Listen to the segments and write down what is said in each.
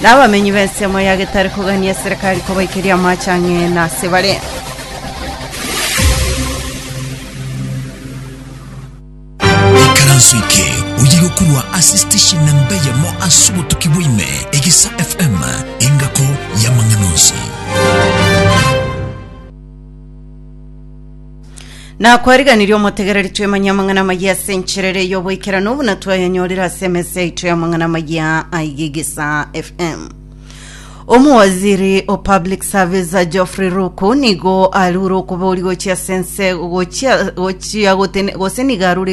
Na abamenyi b'ensemo ya getari kogania eserekari kobaikeria amache ang'e nase bare. ikaranso eke oye gokorwa ase station namba eyemo ase obotuki bwaime egesa fm engako y'amang'ana onsi Nakwariganirie omotegereri twemanye amang'ana amayia ase enchera ere y'oboikeranu buna twayanyorire ase emesa yaito y'amang'ana amayia a Igigisa FM. Omowaziri o Public Service Geoffrey Ruku nigo arure okobori gochia ase ense gochia gochia gotene gose nigo arure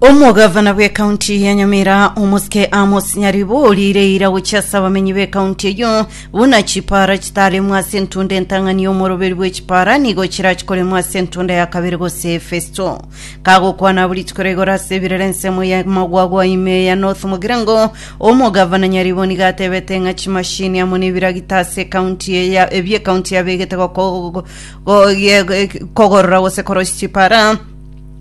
omogavana bw'ekaunti ya nyamira omosike amos nyaribo orire ira gochia ase abamenyi b'ekaunti eyio buna chipara chitaremwa ase entunda entang'ani omoroberi bwe chipara nigo chirachikoremwa ase entunda ya kabere gose efesto kagokwana buri chikoro igoro ase ebirere ensemo ya magwagwa ime ya north mogirango omogavana nyaribo nigo atebete ng'a chimashini amo nebiragita ase ekaunti ya ebiekaunti yabegete goko- go- go- ye- kogorora gose korosia chipara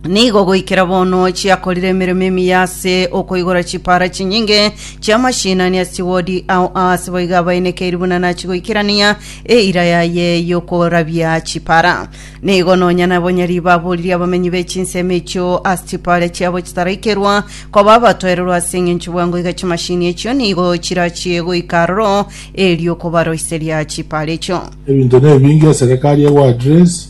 Nigo goikera bono chiakorire emeremo emiya ase okoigora chipara chinyinge chi'amashinani ase chiwodi ao aase boigo abainekeiri buna nachigoikerania eira yaye y'okorabia chipara. Nigo nonya nabonyari baboririe abamenyi be chinsemo echio ase chipara chiabo chitaraikerwa koba abatoererwa ase eng'encho bwango iga chimashini echio nigo chirachie goika aroro erio kobaroiseria chipara echio. Ebinto nebinge eserekari egoadress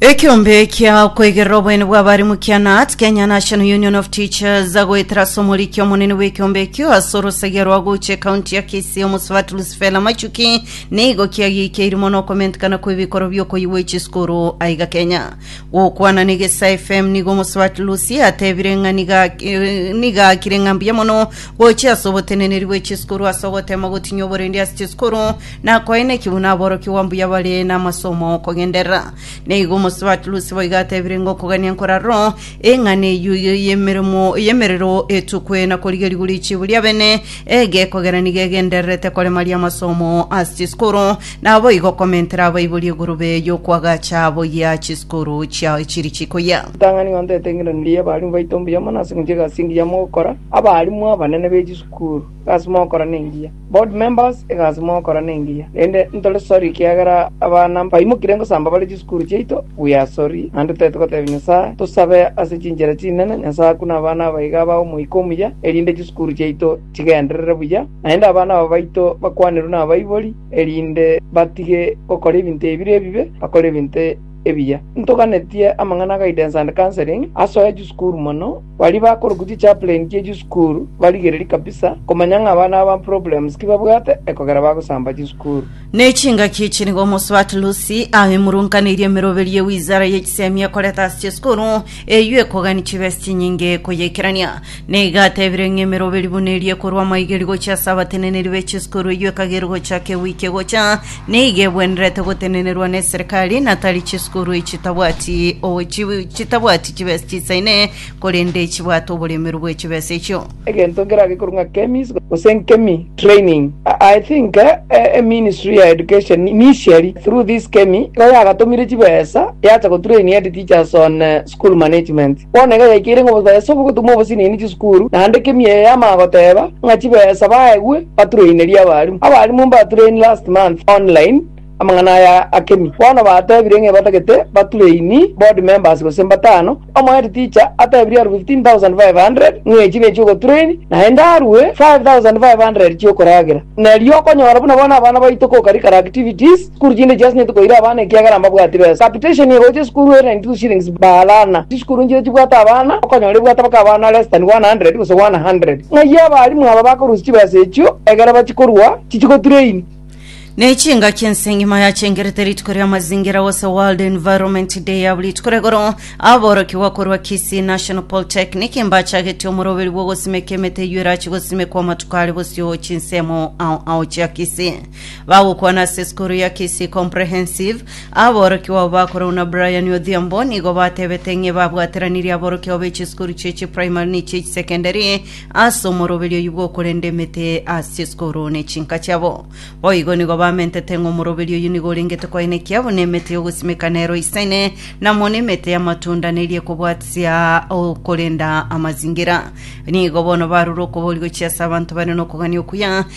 Ekeombe kia okoigerera oboyene bw'abarimu kia NAT, Kenya National Union of Teachers, agoetera ase omoriki omonene bw'ekeombe ekio ase orosagia rwa gocha ekaunti ya Kisii omosubati Lucifela Machuki nigo kiagiikeiri mono okomentekana kw'ebikoro bi'okoyigwa echisukuru aiga Kenya. Gokwana na Egesae FM nigo omosubati Lucy atebire ng'a niga eh, niga akire ng'a mbuya mono gocha ase oboteneneri bw'echisukuru ase ogotema gotinyia oborendi ase chisukuru Nakoeneki buna aborokigwa mbuya bare namasumu kogenderera. Na igo omosubati Lusi boigo atebire ng'a okogania nkorarwo, eng'ana eyio y'emeremo y'emerero etukwe na korigerigwa richibu ri'abene egekogera nigo egendererete koremaria amasumu ase chiskuru, naboigo komentera abaibori egurube y'okwagacha boyia chiskuru chiao chiri chikoyia. Ritang'ani ng'a ntoete eng'endanero y'abaalimu baito mbuya mono ase eng'encho y'egasi engiya mogokora, abaalimu abanene be chisukuru, egasi mogokora nengiya. Board members, egasi mogokora nengiya, rende ntore sori ekiagera abana mbaimokire ngosamba bare chisukuru chiaito, we are sorry, naende tari togotebia Nyasae, tosabe ase chinchera chinene Nyasae akune abana abaiga aba omoika omuya, erinde chisukuru chiaito chigenderere buya, naende abana aba baito bakwanerwe nabaibori, erinde batige gokora ebinto ebire ebibe, bakore ebinto ebiya. Ntoganetie amang'ana a guidance and counselling asoe chisukuru mono, Baria bakorokwa chichaplain chie chisukuru barigererie kabisa komanya ng'a abana aba problems ki babwate ekogera bagosamba chisukuru. Ne chingaki echi nigo omosubati Lucy aemurunkaneirie emeroberi ye wizara ye chisemi ekorete ase chisukuru eyio ekogani chibesi chinyinge koyaikerania. Na iga atebire ng'a emeroberi buna eria ekorwa amaigerio gochia ase abateneneri be chisukuru eyio ekagerwa gochaka ewiki egocha, Nigo ebwenerete gotenenerwa neserikari na tari chisukuru echi chitabwati o- chi- chitabwati chibesa chisaine korende chibwate oboremeru bwe chibesa echio. egento nkerage korwa ng'a kemis gose nkemi training I- I think eh, eh, eh, ministry ya education ni- nisieri through this kemi igo yagatomire chibesa yacha gotrain head teachers on eh, School management. Bono iga yaikeire ng'a obosae ase ogotoma obosinini chisukuru, naende kemia eye yamanya goteba ng'a chibesa baegwe batureinerie abarimu. Abarimu mbatureini last month online amang'ana aya a kemia. Bono batebire ng'a ebatagete batureini board members gose mbatano. Omo head teacher atebirie aru 15,500 ng'a echi nechio ogotureini, naende arue 5,500 chiokoragera. Neri okonyora buna bono abana baito kokari kara activities, Sukuru chinde chiasenyete koira abana ekiagera mbabwati besa. Capitation ye gocha esukuru ere 92 shillings baalana. Chisukuru nchiria chibwate abana, okonyora ebwate mpaka abana less than 100 gose 100. Ng'ai abalimu aba bakorusia chibesa echio egere bachikorua chichigotrain? Ne chingaki ense engima yachengerete rituko ria mazingira gose World Environment Day abwo rituko ria igoro aborokigwa korwa Kisii National Polytechnic mbachagetie omoroberi bw'ogosimeka emete eyio erache gosimekwa amatuko are bosio chinsemo ao ao chia Kisii. Bagokwana ase esukuru ya Kisii Comprehensive. Aborokigwa abo bakorwa buna Brian Odhiambo nigo batebete ng'e babwateranirie aborokigwa be chisukuru chie chiprimary ne chie chisekendari ase omoroberio oyio bw'okorenda emete ase esukuru ne chinka chiabo. Boigo nigo bamentete ng'a omoroberio oyio nigo orengete koenekia buna emete y'ogosimeka nero eisaine na mono emete y'amatunda neria ekobwatisia okorenda amazingira. Nigo bono barure okobori gochia ase abanto bare nokogania okuya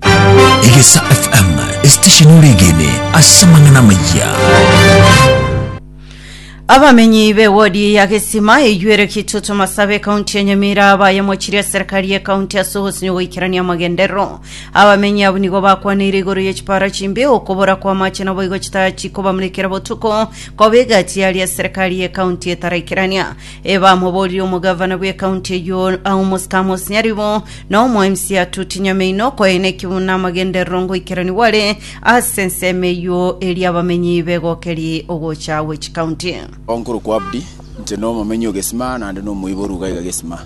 Egesa FM, esitesheni oregene ase amang'ana amayia. Abamenyi b'ewodi ya Gesima eyuere Kitutu Masabe ekaunti ya Nyamira bayemochirie eserikari y'ekaunti ase ogosinyo goikerania amagenderero. Abamenyi abwo nigo bakwaneire igoro ye chipara chimbe, okobora kw'amache naboigo chitaya chikobamurekera botuko, koba egati yaria eserikari y'ekaunti etaraikerania. Ebamoboririe omogavana bw'ekaunti eyio Aumus Kamus Nyaribo na omoemisi Atuti Nyameino okoeena ekibuno na amagenderero ngoikeranigwa are ase ensemo eyio eria abamenyi begokerie ogocha gwe chikaunti. Nkorokwa Abdi, inche nomomenyi o Gesima naende nomoiboru iga iga Gesima.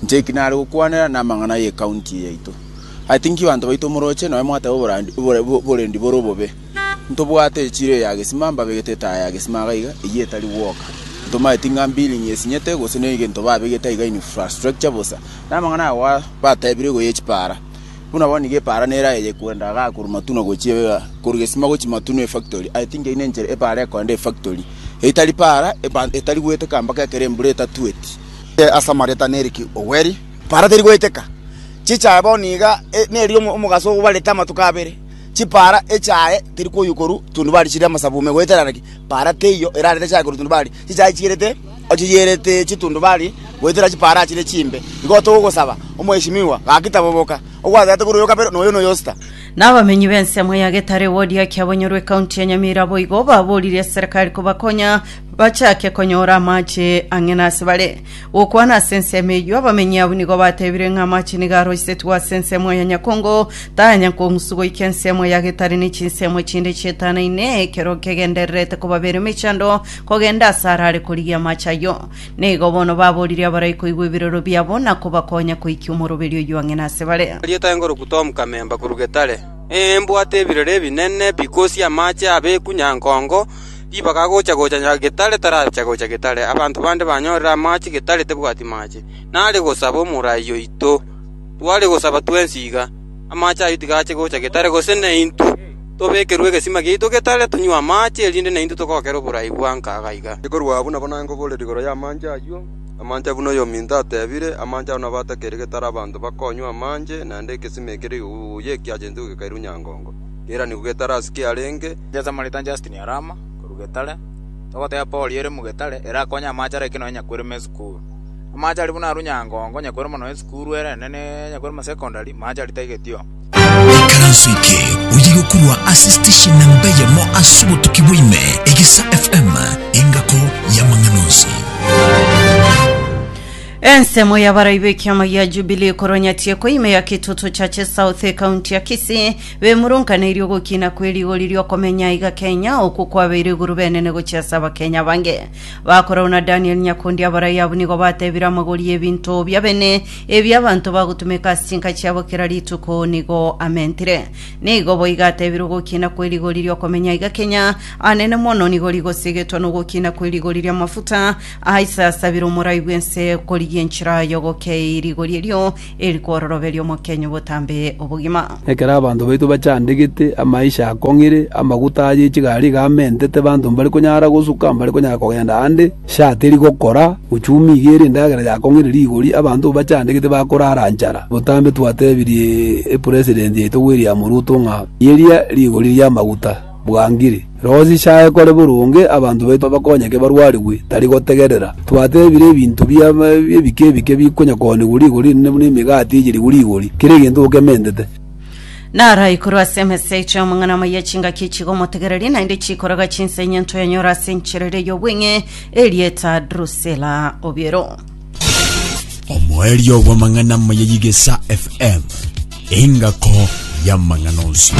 Inche eki nare gokwanera namang'ana ye county eye yaito. I think banto baito moroche nonya mwateba oborandi oborendi bore obobe. Ntobwate echiro eya gesima, mbabegete etaya ya gesima iga iga, eyio etari gwoka. Ntomanyeti ng'a mbilingi esinyete, gose noyo egento babegete aiga infrastructure bosa. Na amang'ana aya goa batebire igo y'echipaara. Buna bono nigo epaara nere aye yekwenda igaa korwa Matuno gochia iga, korwa gesima gochia Matuno efactory. I think eyio nenchera epaara ekoenda efactory. Eyio tari paara, eba etari goeteka mpaka ekero embura etatueti. Ase amareta Nerick Oweri, paara teri goeteka. Chichae bono iga, e neri omo omogaso obarete amatuko abere. Chipaara echaye teri koyukorwa tundubari chire amasabume, goetera naki paara teiyo erarete echaye korwa tundubari. Chichaye chierete ochiyerete chitundubari goetera chipaara chire chimbe. Igo togosaba, Omweshimiwa, gaki taboboka, ogwatete korwa oyo kabere na oyo na oyo sita. Na abamenyi b'ensemo ya Getare ewodi ya Kiabonyoro ekaunti ya Nyamira boigo baboorire eserekari kobakonya bachake konyora amache ang'e nase bare. Gokwana ase ensemo eyio, abamenyi abwo nigo batebire ng'a amache nigo aroisetwe ase ensemo ya Nyakongo, tayanyakong'usu goika ensemo ya Getari ne chinsemo echinde chietanaine, ekero kegendererete kobabera emechando kogenda ase arare korigia amache ayio. Nigo bono baboorire abarai koigwa ebiroro biabo na kobakonya koikia omoroberio oyio ang'e nase bare. Erieta engoroku Tom Kamemba korwa Getare, Ee, mbwate ebirore ebinene bikosia amache abeku Nyankongo, Ribaga agocha gocha getare taracha gocha getare, abanto bande banyorire amache getare tebwati mache. Nare gosaba omorai oito, tware gosaba twensi iga, amache ayio tiga ache gocha getare, gose naintwe tobekerwe egesima giaito getare tonywe amache, erinde naintwe togokere oborai bwa nkaga iga. Ekorwa abwo nabo naye ngoborera igoro y'amache ayio, amache ayio buna oyominto atebire, amache ayio nabo atakeire getare abanto bakonywa amache, naende egesima ekere igoro y'ekiacha gento gekairwe nyangongo, keranigwe getare ase kiarenge, Inche Samaritan Justin Arama, korwa Getare, togoteba Paul ere Mugetare ere akonye amache ara ekero nyakwere me esukuru. Amache aria buna arwa nyangongo nyakwere mono esukuru ere enene ya nyakwere ma secondary, mache aria taigetioo. Ekaranso eke oye gokurwa ase station namba eyemo ase obotuki bwa ime, Egesa FM, engako y'amang'ana onsi. Ensemo y'abaraibe ekiama gia Jubilee korwa Nyatieko ime ya Kitutu Churches South, ekaunti ya Kisii, Bemurunkaneirie ogokina kwe rigori riokomenya iga Kenya okwo kwabeire iguru benene gochia ase abakenya bange. Bakorau na Daniel Nyakundi abarai abwo nigo batebire amagori y'ebinto bia bene ebi abanto bagotumeka ase chinka chiabo kera rituko nigo amentire. Nigo boiga atebire ogokina kwe rigori riokomenya iga Kenya anene mono nigo rigosigetwa nogokina kwe rigori riamafuta aisasabire omorai bwense korigia enchera yogokei rigori erio eri kwororoberia omokenyu obotambe obogima. Ekero abanto baito bachandegete, amaisha akong'ire, amaguta aye echigari iga amentete, abanto mbari konyara gosuka, mbari konyara kogenda ande, sha teri gokora, uchumi iga ere endagera yakong'ire rigori, abanto bachandegete bakorara nchara. Botambe twatebirie Epresident yaito William Ruto ng'a yeria rigori ri'amaguta. bwangire. Roho zichae kore boronge, abanto baito bakonyeke barwarigwe, tari gotegerera twatebire ebinto bia ebike ebike bikonyakoonigwa rigori inene buna emegati eyerigwe rigori, kera egento okementete. Naro aikorwe ase emesa eche amang'ana amaya chingaki echiga omotegererie, naende chikoroga chinsa inye ntoyanyore ase enchera eria y'obweng'e, erieta Drusila obiero. Omoerio bw'amang'ana amaya y'Egesa FM, engako y'amang'ana onsi.